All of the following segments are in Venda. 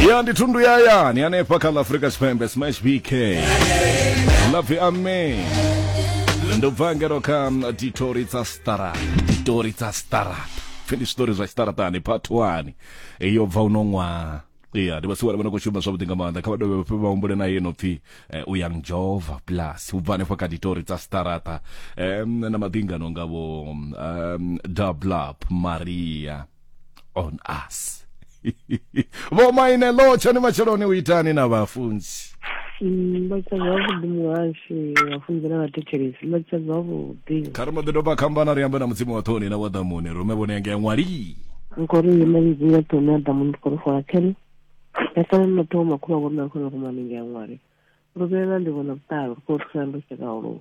ya ndi thundu ya yani hanefha kha ḽa afurika tshipembe smash bk lapfi ame ndo bva ngero kha ditori dza stara ditori dza stara pfhi ndi zwitori zwa tshiṱaraṱani part 1 yo bva uno ṅwaha ya ndi vhasiwana vhana khou shuma zwavhuḓi nga maanḓa kha vha dovhe vhafhe vha humbule na yeno pfhi eh, u yang jova plus u bva hanefho kha ditori dza staraṱa um, na maḓingano ngavho um, dublap maria on us vho maine lo tshani matsheloni u itani na vhafunzi Mm, vha tshedza vhuḓi muhashi vhafunzi na vhathetshelesi vha tshedza vhuḓi kha ri mbo ḓi doba khambana ri ambe na mudzimu wa ṱhoni na wa ḓamuni rume vhone yange ya ṅwali nkori yena lidzi ya tone ya damu ndi kori fola kene ya sala na thoma khula vhona khona ku maninga ya ngwari ro vhela ndi vhona vhutalo ko tsana ndo tsheka holo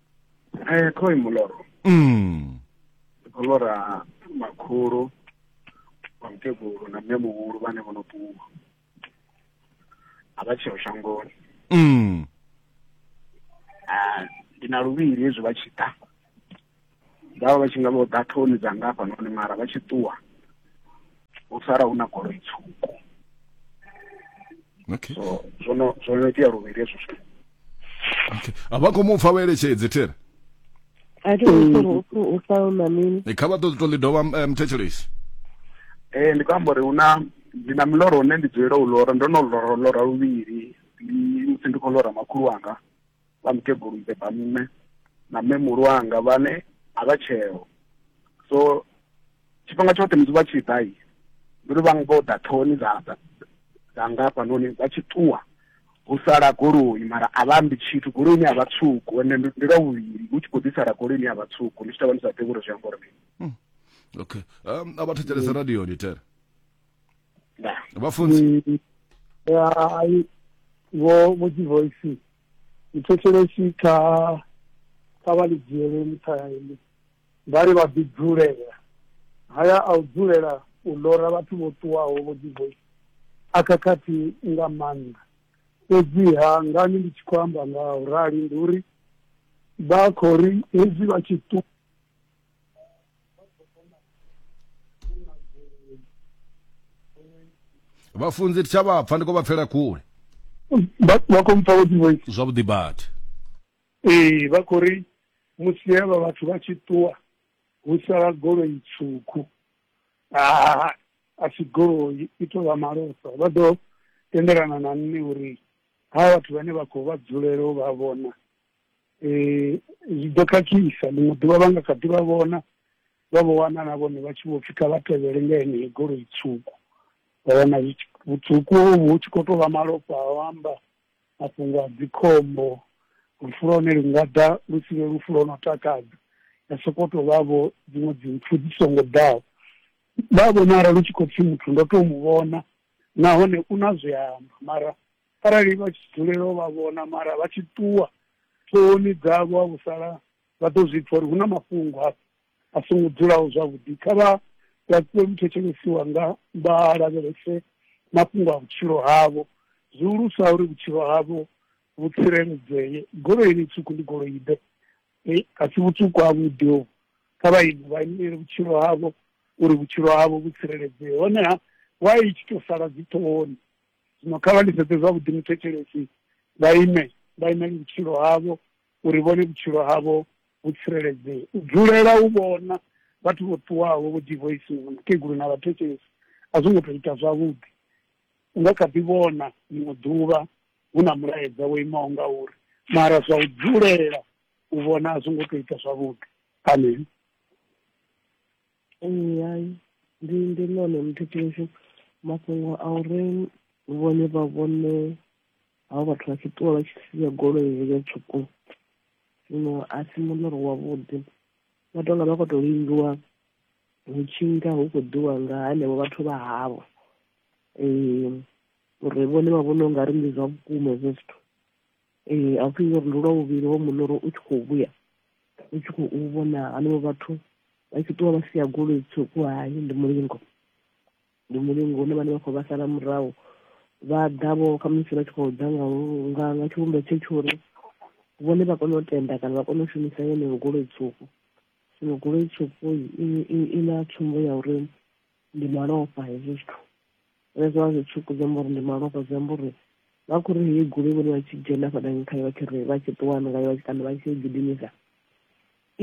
Eh, khoi muloro mm. mulora makhulu vamukegulu na mme muhulu vhane vho no ṱuwa a vha tsheo shangoni mm. Ah, ndi na luvhili hezwi vha tshi ḓa vhavha vha tshi nga vho ḓa thoni dza nga hafhanoni mara vha tshi ṱuwa u sala hu na goloi tswuku okay so zwo no zwo no itea luvhili hezwo zwithu okay a vha khou mu pfa vha eletshedze thera a thi khou pfa u pfa u mamini Eh, kha vha ṱoḓe to ḽi dovha eh, mthetshelesi eh ndi khou amba uri hu na ndi na miloro une ndi dzulela u lora ndo no lora lora luvhili ndi musi ndi khou lora makhulu wanga vha mukegulu mbeba nṋe na mme muhulu wanga vhane a vha tsheo so tshifhinga tshoṱhe musi vha tshi ḓa ndi uri vha nga u ḓa ṱhohoni dza dza nga hafhanoni vha tshi ṱuwa hu sala goloi mara a vha ambi tshithu goloi ine ya vha tswuku ende ndi lwa vhuvhili hu tshi khou ḓi sala goloi ine ya vha tswuku ni tshi ṱavha ni sa ḓivhi uri zwi amba uri mini hmm. okay um, a vha thetshelesa radioni tere nda vhafunzi Ni- ya ai vho vho divoisi muthetshelesi kha kha vha ḽi dzhiele nṱha ya ini vha ri vha ḓi dzulela haya a u dzulela u lora vhathu vho ṱuwaho vho divoisi a khakhathi nga maanḓa fhedziha ngani ndi tshi khou amba nga u rali ndi uri vha khou ri hezwi vha tshi ṱu vhafunzi thi tsha vha pfa ndi khou vha pfela kule vha vha khou mpfa vho dzivoice zwavhuḓi badi ee vha khou ri musi hevha vhathu vha tshi ṱuwa hu sala goloi tswuku aa a si goloi i tou vha malofha vha ḓo tendelana na nṋe uri ha vhathu vhane vha khou vha dzulela u vha vhona eh, zwi ḓo khakhisa ḽiṅwe ḓuvha vha nga kha ḓi vha vhona vha vho wana na vhone vha tshi vho pfi kha vha tevhele nga yeneyi goloi tswuku vha wana zwi tshi- vhutswuku hovhu hu tshi khou tou vha malofha a u amba mafhungo a dzikhombo lufu lwa hone lu nga ḓa lu si vhe lufu lwo no takadza ya sokou tou vha vho dziṅwe dzimpfu dzi songo ḓaho vha vhonala lu tshi khou pfi muthu ndo tou mu vhona nahone u na zwe a amba mara Arali vha tshi dzulela u vha vhona mara vha tshi ṱuwa, ṱhohoni dzavho ha vhu sala, vha ḓo zwi pfa uri hu na mafhungo hafha a songo dzulaho zwavhuḓi. Kha vha laṱiwe muthetshelesi wanga vha lavhelese mafhungo a vhutshilo havho, zwihulusa uri vhutshilo havho vhu tsireledzee. Goloi yeneyi tswuku ndi goloi-ḓe? Hei, a si vhutswuku havhuḓi hovhu. Kha vha ime, vha imele vhutshilo havho, uri vhutshilo havho vhu tsireledzee. Honeha, why i tshi tou sala dziṱhohoni? zwino kha vha ndi sedze zwavhuḓi muthetshelesi vha ime vha imele vhutshilo havho uri vhone vhutshilo havho vhu tsireledzee u dzulela u vhona vhathu vho ṱuwaho vho divoisiwa na mukegulu na vhathetshelesi a zwo ngo tou ita zwavhuḓi u nga kha ḓi vhona ḽiṅwe ḓuvha hu na mulaedza wo imaho nga uri mara zwa u dzulela u vhona a zwo ngo tou ita zwavhuḓi amen Ee, hai ndi ndi ḽone muthetheshe mafhungo a uri vhone vha vhone havho vhathu vha tshi ṱuwa vha tshi sia goloi heyo tswuku zwino a si muḽoro wavhuḓi vha tonga vha khou tou lingiwa hu tshi nga hu khou ḓiwa nga henevho vhathu vha havho um uri vhone vha vhona u nga ri ndi zwa vhukuma hezwo zwithu ee a u tea uri ndi lwa vhuvhili ho muḽoro u tshi khou vhuya u tshi khou vhona hanevho vhathu vha tshi ṱuwa vha sia goloi tswuku hai ndi mulingo ndi mulingo hune vhane vha khou vha sala murahu vha ḓa vho khamusi vha tshi khou ḓa nga nga tshivhumbeo tshe tsho uri vhone vha kone u tenda kana vha kone u shumisa yeneyo goloi tswuku zwino goloi tswuku i na tsumbo ya uri ndi malofha hezwo zwithu zwine zwa vha zwi tswuku zwi amba uri ndi malofha zwi amba uri vha khou ri heyi goloi vhone vha tshi dzhena fhadanyi khayo vha tshi ri vha tshi ṱuwa ngayo kana vha tshi gidimisa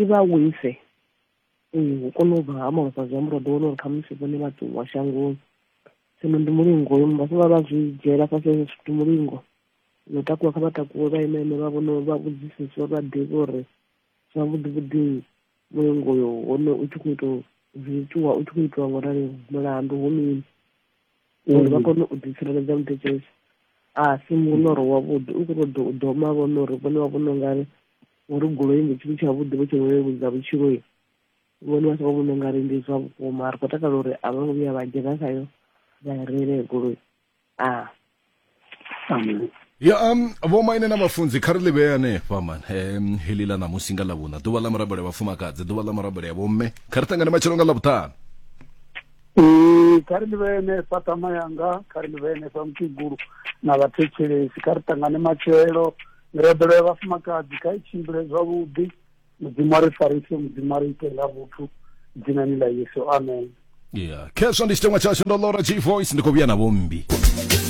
i vha wise ee hu kone u bva ha malofha zwi amba uri vha ḓo wana uri khamusi vhone vha ṱuwa shangoni zwino ndi mulingo yo vha vha vha zwi dzhiela fhasi hezwo zwithu mulingo no takuwa kha vha takuwe vha ime ime vha vhone vha vhudziseswa vha ḓivhe uri zwavhuḓi vhuḓi mulingo uyo hone u tshi khou ita zwi itiwa u tshi khou itiwa ngo rali mulandu ho mini uri vha mm. kone u ḓitsireledza muthetshelesi a si muloro wavhuḓi u khou ṱoḓa u doma vhona uri vhone vha vhona ungari uri goloi ndi tshithu tshavhuḓi vho tshi leludza vhutshiloi vhone vha sa vha vhona ungari ndi zwa vhukuma ri khou takala uri a vho ngo vhuya vha dzhena khayo vha i reile goloi ah. amen ya um vho maine na vhafunzi kha ri ḽi vhee hanefha man um heḽi ḽa ṋamusi nga ḽavhuṋa ḓuvha ḽa murabelo ya vhafumakadzi ḓuvha ḽa murabelo ya vhomme kha ri ṱangane matshelo nga ḽavhuṱanu ee kha ri ḽi vhee hanefha tama yanga kha ri ḽi vhee hanefha mukegulu na vhathetshelesi kha ri ṱangane matshelo mirabelo ya vhafumakadzi kha i tshimbile zwavhuḓi mudzimu a ri farise mudzimu a ri ite nga vhuthu dzinani ḽa yesu amen ya khezwo ndi tshiteṅwa tshashu ndo lora g voice ndi khou vhuya na vhombi